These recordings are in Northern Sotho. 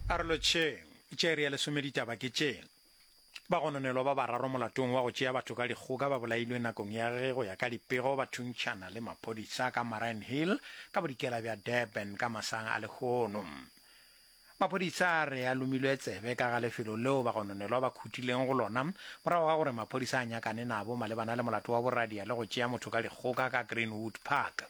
Arolotšheng. Tša iri ya lesome Ditaba ke tše, Bagononelwa ba bararo molatong wa go tšea batho ka dikgoka ba bolailwe nakong ya ge go ya ka dipego ba thuntšhana le maphodisa ka Mariannhill ka bodikela bja Durban ka masang a lehono. Maphodisa a re a lomilwe tsebe ka ga lefelo leo bagononelwa ba khutileng go lona morago ga gore maphodisa a nyakane nabo malebana le molato wa boradia le go tšea motho ka dikgoka ka Greenwood Park.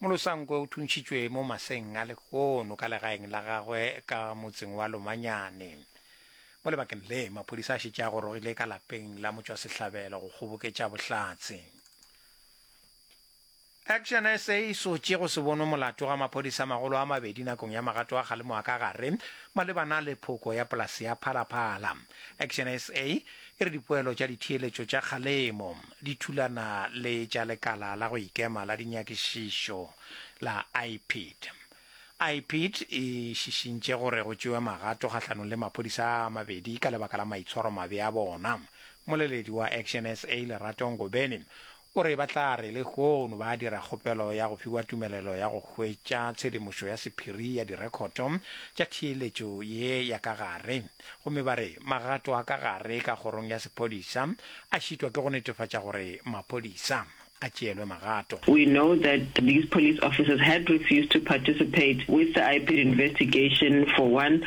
Molosankwe o thuntšhitšwe mo maseng a lehono ka legaeng la gagwe ka motseng wa Lomanyane. Mo lebakeng le, maphodisa a šetše a gorogile ka lapeng la motšwasehlabelo go kgoboketša bohlatse. Action sa e sotše go se bonwe molato ga maphodisa a magolo a mabedi nakong ya magato a kgalemo a ka gare malebana le phoko ya polase ya Phalaphala. Action sa e re dipoelo tša ditheeletšo tša kgalemo di thulana le tša lekala la go ikema la dinyakišišo la IPID. IPID e šišintše gore go tšewe magato kgahlanong le maphodisa a mabedi ka lebaka la maitshwaro mabe a bona. Moleledi wa Action SA Lerato Ngobeni O re ba tla re lehono ba dira kgopelo ya go fiwa tumelelo ya go hwetša tshedimošo ya sephiri ya direkhoto tša theeletšo ye ya ka gare, gomme ba re magato a ka gare ka kgorong ya sephodisa a šitwa ke go netefatša gore maphodisa a tšeelwe magato. We know that these police officers had refused to participate with the IPID investigation for one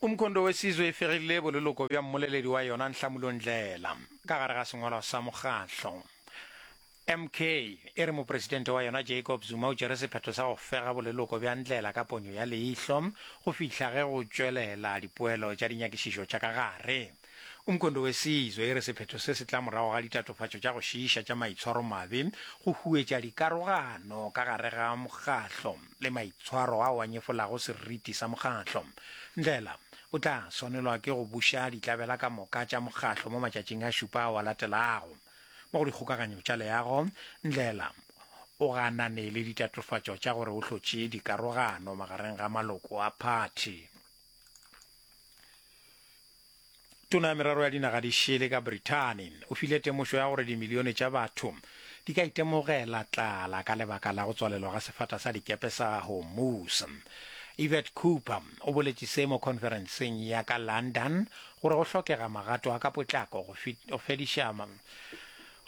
Umkhondo Wesizwe e fegile boleloko bja mmoleledi wa yona Nhlamulo Ndlela ka gare ga sengwalwa sa mokgahlo. MK e re mopresidente wa yona Jacob Zuma o tšere sephetho sa go fega boleloko bja Ndlela ka ponyo ya leihlo go fihla ge go tšwelela dipoelo tša dinyakišišo tša ka gare. Umkhonto Wesizwe e re sephetho se se tla morago ga ditatofatšo tša go šiiša tša maitshwaromabe go huetša dikarogano ka gare ga mokgahlo le maitshwaro ao a nyefolago seriti sa mokgahlo. Ndlela o tla swanelwa ke go buša ditlabela ka moka tša mokgahlo mo matšatšing a šupa ao a latelago. Mo go dikgokaganyo tša leago, Ndlela o ganane le ditatofatšo tša gore o hlotše dikarogano magareng ga maloko a phathi. Tona ya Merero ya Dinaga di Šele ka Brithani o file temošo ya gore dimilione tša batho di ka itemogela tlala ka lebaka la go tswalelwa ga sefata sa dikepe sa Hormuz. Yvette Cooper o boletše se mo khonferenseng ya ka London gore go hlokega magato a ka potlako go fediša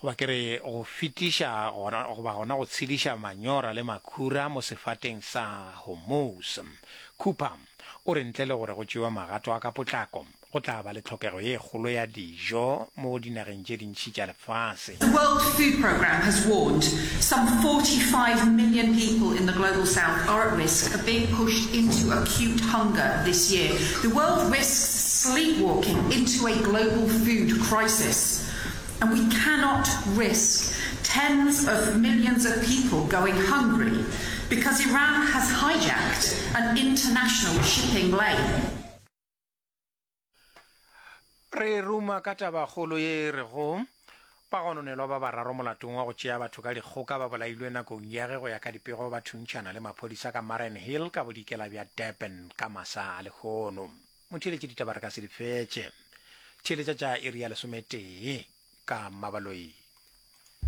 goba ke re go fetiša goba gona go tshediša manyora le makhura mo sefateng sa Hormuz. Cooper O re ntle le gore go tšewe magato a ka potlako, go tla ba le tlhokego ye kgolo ya dijo mo dinageng tše dintši tša lefase. The World Food Programme has warned some 45 million people in the Global South are at risk of being pushed into acute hunger this year. The world risks sleepwalking into a global food crisis. And we cannot risk tens of millions of people going hungry because Iran has hijacked an international shipping lane. Re ruma ka tabakgolo ye e rego, Bagononelwa ba bararo molatong wa go tšea batho ka dikgoka ba bolailwe nakong ya ge go ya ka dipego ba thuntšhana le maphodisa ka Mariannhill ka bodikela bja Durban ka masa a lehono. Mo theeletše ditaba re ka se di fetše. Theeletša tša iri ya lesometee ka Mmabaloi.